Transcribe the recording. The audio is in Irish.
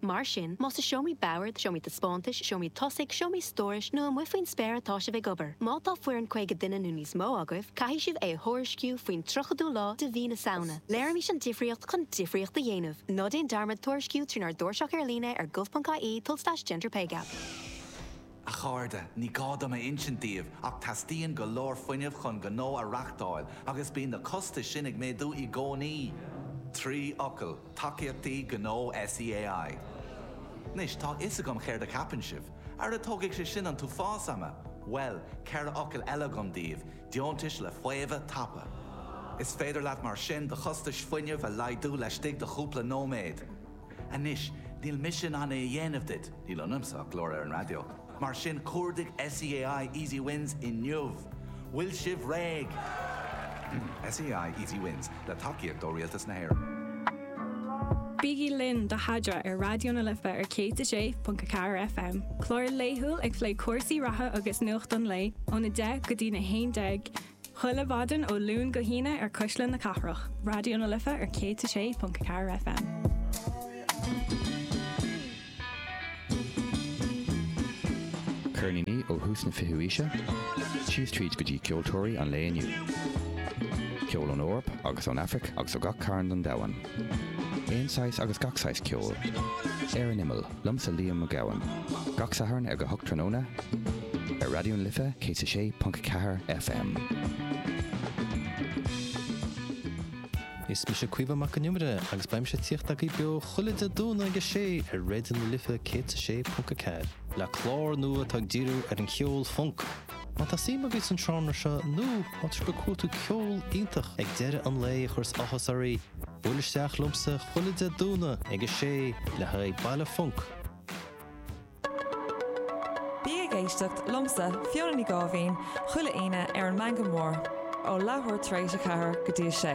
Mar sin, más i seomraí boird, seomraí taispeántais, seomraí tosaigh, seomraí stórais nó amuigh faoin spéir atá sibh ag obair, má tá foireann 50 duine nó níos mó agaibh, caithfidh sibh é a thuairisciú faoin 30ú lá de mhí na Samhna. Léirímis an difríocht chun difríocht a dhéanamh. Ná déan dearmad tuairisciú trínár dtairseach ar líne ar gov.ie tulslais gender pay gap. A chairde, ní gá dom a insint daoibh ach teastaíonn go leor fuinnimh chun gnó a reachtáil agus bíonn na costais sin ag méadú i gcónaí! Trí fhocal, tacaíochtaí gnó SEAI. Anois, tá a fhios agam céard a cheapann sibh, Ara tógfaidh sé sin an t-uafás ama! Bhuel, ceithre fhocal eile agam daoibh, deontais le faomhadh tapa. Is féidir leat mar sin do chostais fuinnimh a laghdú laistigh de chúpla nóiméad. Anois, níl mise in ann é a dhéanamh duit, níl ionamsa ach glór ar an raidió, mar sin cuardaigh SEAI Easy Wins inniu! Bhfuil sibh réidh? SEAI Easy Wins, le tacaíocht ó Rialtas na hÉireann. Bígí linn do Chadráil ar Raidió na Life ar 106.4 FM, clár laethúil ag plé cúrsaí reatha agus nuacht an lae, óna 10 go dtí'n 11, Chuile mhaidin ó Luan go hAoine ar Cuisle na Cathrach, Raidió na Life ar 106.4 FM. Ceirníní ó thús na fichiú haoise, síos tríd go dtí ceoltóirí an lae inniu. Ceol ón Eoraip agus ón Afraic agus ó gach cearn den domhan. Aon saghas agus gach saghas ceoil. Ar an imeall, liomsa Liam Mac Gabhann, gach Satharn ar go hocht tráthnóna, ar Raidió na Life 106.4 FM. Is mise Caoimhe Mac an Iomaire agus beidh mise ag tíocht agaibh beo chuile Dé Domhnaigh ag a sé ar Raidió na Life 106.4 le clár nua atá ag díriú ar an cheol func. Má tá suim agaibh san seánra seo nó má tá sibh ag cuartú ceol iontach ag deireadh an lae a chuireas áthas oraibh, buailigí isteach liomsa chuile Dé Domhnaigh ag a sé le haghaidh Baile Func. Bí ag éisteacht liomsa, Fiona Ní Gáibhín, chuile Aoine ar an Meangadh Mór, ó leathuair tar éis a ceathair go dtí a sé.